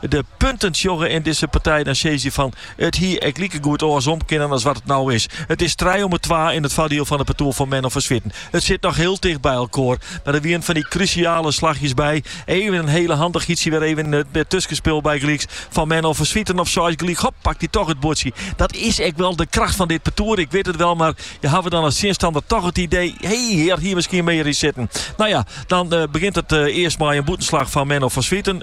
De punten sjogge yn dizze partij dan sizze fan it hie ek likegoed oarsom kinnen as wat it no is. It is trije om 'e twa yn it foardiel fan it partoer fan Menno van Zwieten. It sit noch hiel ticht by elkoar, mar der wienen fan dy krusjale slachjes by. Even in hiele handichheidsje, wer even yn it tuskenspul bygelyks fan Menno van Zwieten op seis gelyk, hop, pakt hy toch it buordsje. Dat is ek wol de kracht fan dit partoer, ik wit it wol, mar je hawwe dan as tsjinstanner toch it idee, hey, hjir hie miskien mear yn sitten. No ja, dan begjint it earst mei in bûtenslach fan Menno van Zwieten.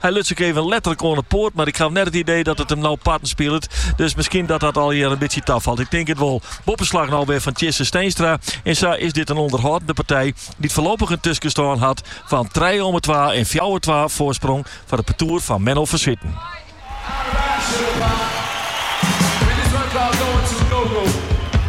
Hy luts ek even letterlik oan 'e poat, mar ik haw net it idee dat it him no parten spilet. Dus miskien dat dat allegear in bytsje tafalt. Ik tink it wol. Boppeslach no wer fan Tjisse Steenstra en sa is dit in ûnderhâldende partij dy't foarloppich in tuskestân hat fan trije omme twa en fjouwer twa foarsprong foar it partoer fan Menno van Zwieten.